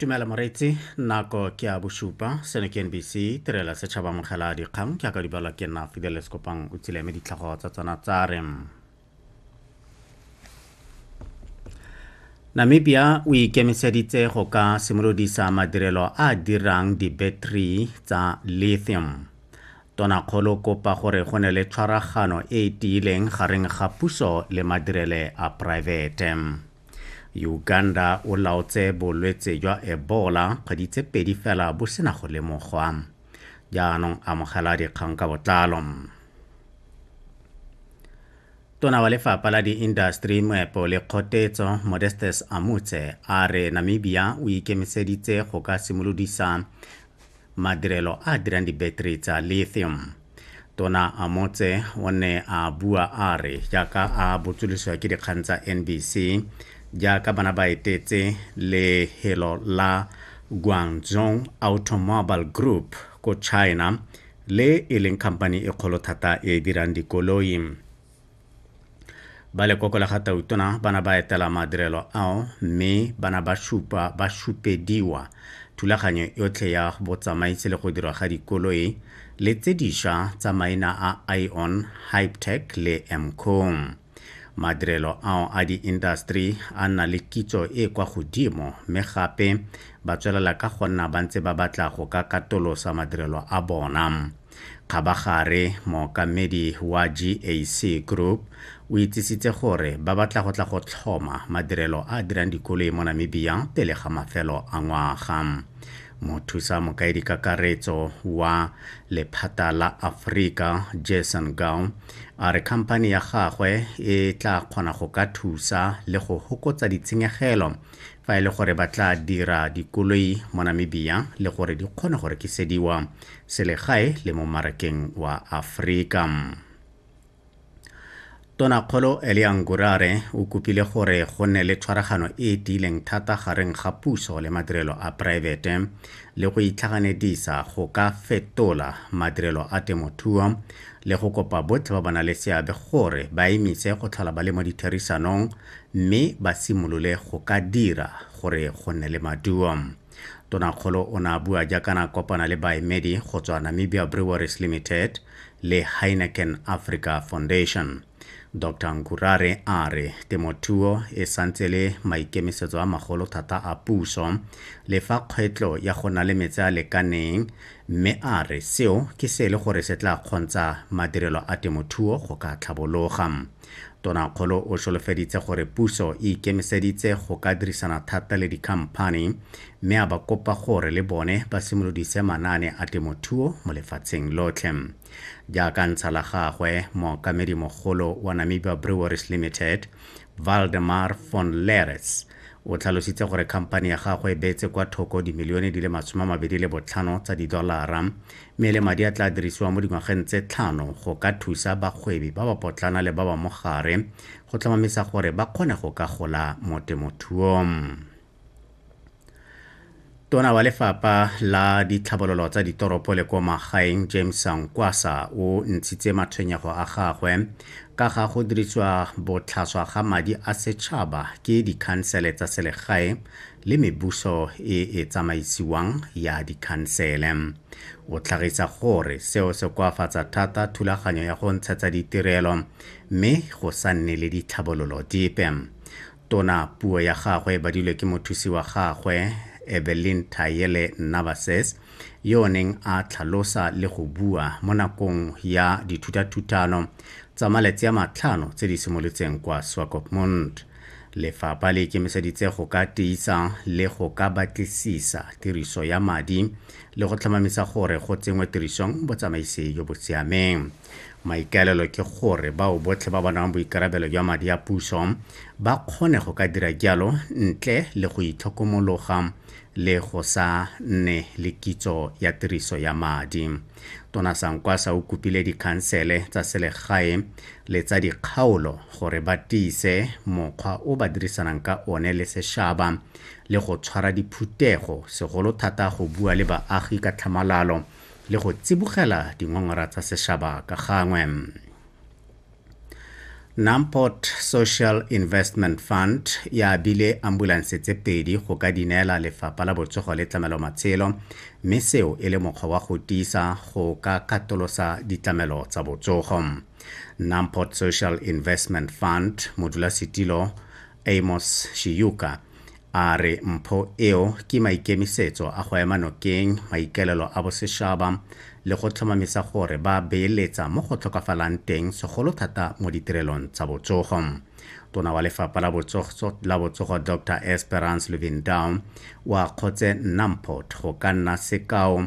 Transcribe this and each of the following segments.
tumela moreetsi nako ke a bosupa seno ke nbc tirela setšhaba mogela dikgang ke aka dibala ke nna fideles kopang o tsile me ditlhago tsa tsona tsa re namibia o ikemiseditse go ka simolodisa madirelo a dirang di-battery tsa lithium tonakgolo kopa gore go ne le tshwaragano e e tiileng gareng ga puso le madirele a poraefete Uganda o laotse bolwetse jwa Ebola kgwedi tse pedi fela bo sena go lemogwa. Jaanong amogela dikgang ka botlalo. Tona wa lefapha la diindastri moepo le kgotetso Modestes Amutse a re Namibia o ikemiseditse go ka simolodisa madirelo a a dirang dibeteri tsa lithium tona amotse o ne a bua a re jaaka a botsolisiwa ke dikgang tsa nbc jaaka bana ba etetse lehelo la guangzhong automobile group ko china le e leng khamphani e kgolo thata e e dirang dikoloi ba lekoko la ga tautona ba na ba etela madirelo ao mme ba na ba supa ba supediwa thulaganyo yotlhe ya botsamaisi le go dirwa ga dikoloi le tse diša tsa maina a ion hypetech le mcom madirelo ao a di-industry a nna le kitso e kwa godimo mme gape ba tswelela ka go nna ba ntse ba batla go ka katolosa madirelo a bona Kgabagare, mookamedi wa GAC Group o itsisitse gore ba batla go tla go tlhoma madirelo a a dirang dikoloi mo Namibia pele ga mafelo a ngwaga. Mothusa mokaedikakaretso wa lephata la Aforika, Jason Gau, a re khamphani ya gagwe e tla kgona go ka thusa le go hokotsa ditshenyegelo fa e le gore ba tla dira dikoloi mo Namibia le gore di kgone go rekisediwa selegae le mo marakeng wa Afrika. Tonakgolo Elia Ngurare o kopile gore go nne le tshwaragano e e tiileng thata gareng ga puso le madirelo a poraefete le go itlhaganedisa go ka fetola madirelo a temothuo le go kopa botlhe ba ba nang le seabe gore ba emise go tlhola ba le mo ditherisanong mme ba simolole go ka dira gore go nne le maduo. Tonakgolo o ne a bua jaaka na kopana le baemedi go tswa Namibia Breweries Limited le Heineken Africa Foundation. Dr Nkurare a re temothuo e santse le maikemisetso a magolo thata a puso le fa kgwetlo ya go na le metse a lekaneng mme a re seo ke se e le gore se tla kgontsha madirelo a temothuo go ka tlhabologa. Tonakgolo o solofeditse gore puso e ikemiseditse go ka dirisana thata le dikhamphani mme a ba kopa gore le bone ba simolodise manaane a temothuo mo lefatsheng lotlhe. Jaaka ntsha la gagwe, mookamedi mogolo wa Namibia Breweries Limited, Valdemar von Leres, O tlhalositse gore khamphani ya gagwe e beetse kwa thoko dimilione di le masome a mabedi le botlhano tsa didolara mme e le madi a tla dirisiwang mo dingwageng tse tlhano go ka thusa bagwebi ba ba potlana le ba ba mo gare go tlhomamisa gore ba kgone go ka gola mo temothuong. tona wa lefapha la ditlhabololo tsa ditoropo le kwa magaeng james sankwasa o ntshitse matshwenyego a gagwe ka ga go dirisiwa botlhaswa ga madi a setšhaba ke dikhansele tsa selegae le mebuso e e tsamaisiwang ya dikhansele o tlhagisa gore seo se koafatsa thata thulaganyo ya go ntshetsa ditirelo mme go sa nne le ditlhabololo dipe Tona puo ya gagwe e badilwe ke mothusi wa gagwe, Evelyn Tayele Navases, yo o neng a tlhalosa le go bua mo nakong ya dithutathutano tsa malatsi a matlhano tse di simolotseng kwa Swakopmund. Lefapha le ikemiseditse go ka tiisa le go ka batlisisa tiriso ya madi le go tlhomamisa gore go tsenngwe tirisong botsamaisi jo bo siameng. Maikaelelo ke gore bao botlhe ba ba nang boikarabelo jwa madi a puso ba kgone go ka dira jalo ntle le go itlhokomologa le go sa nne le kitso ya tiriso ya madi. Tona Sankwasa o kopile dikhansele tsa selegae le tsa dikgaolo gore ba tiise mokgwa o ba dirisanang ka one le sešaba le go tshwara diphuthego segolo thata go bua le baagi ka tlhamalalo le go tsibogela dingongora tsa sešaba ka gangwe. Namport Social Investment Fund ya abile ambulanse tse pedi go ka di neela lefapha la botsogo le tlamelo matshelo mme seo e le mokgwa wa go tiisa go ka katolosa ditlamelo tsa botsogo. Namport Social Investment Fund modulasetilo Amos Shiyuka a re mpho eo ke maikemisetso a go ema nokeng maikaelelo a bosešaba le go tlhomamisa gore ba beeletsa mo go tlhokafalang teng segolo thata mo ditirelong tsa botsogo. Tona wa lefapha la botsogo, la botsogo Dr Esperance Luvindao wa kgotse nna mpho go ka nna sekao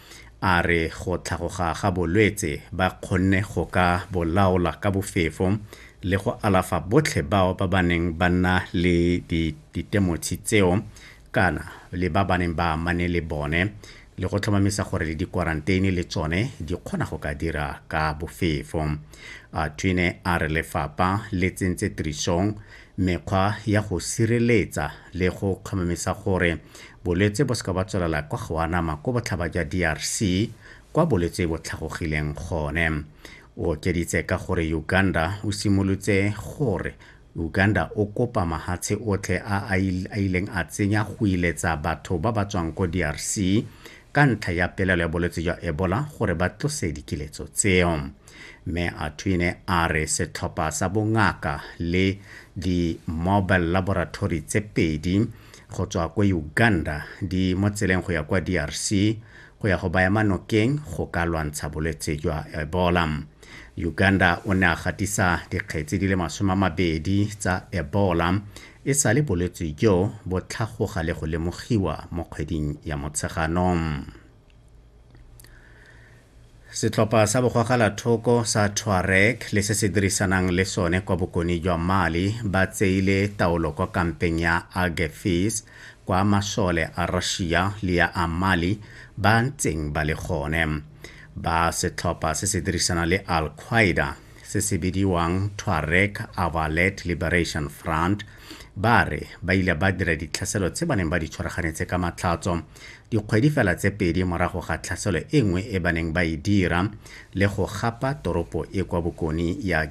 A re go tlhagoga ga bolwetse ba kgonne go ka bo laola ka bofefo le go alafa botlhe bao ba ba neng ba nna le ditemotshi tseo kana le ba ba neng ba amane le bone le go tlhomamisa gore le dikwaranteine le tsone di kgona go ka dira ka bofefo. A Twine a re lefapha le tsentse tirisong Mekgwa ya go sireletsa le go kgomamisa gore bolwetse bo seka ba tswelela kwa go anama ko botlhaba jwa DRC kwa bolwetse bo tlhagogileng gone. O okeditse ka gore Uganda o simolotse gore Uganda o kopa mahatshe otlhe a a ileng a tsenya go iletsa batho ba ba tswang ko DRC ka ntlha ya pelelo ya bolwetse jwa Ebola gore ba tlose dikiletso tseo. Mme Atwine a re setlhopha sa bongaka le di-mobile laboratory tse pedi go tswa ko Uganda di mo tseleng go ya kwa DRC go ya go baya manokeng go ka lwantsha bolwetse jwa Ebola. Uganda o ne a gatisa dikgetsi di le masome a mabedi tsa Ebola e sale bolwetse jo bo tlhagoga le go lemogiwa mo kgweding ya Motsheganong. setlhopha sa bogwagalathoko sa tuareg le se se dirisanang le sone kwa bokone jwa mali ba tseile taolo kwa kampeng ya agefis kwa masole a russia le ya a mali ba ntseng ba le gone ba setlhopha se se dirisanang le al-qaeda se se bidiwang Tuareg Avalet Liberation Front ba re ba ile ba dira ditlhaselo tse ba neng ba di tshwaraganetse ka matlhatso dikgwedi fela tse pedi morago ga tlhaselo e nngwe e ba neng ba e dira le go gapa toropo e kwa bokone ya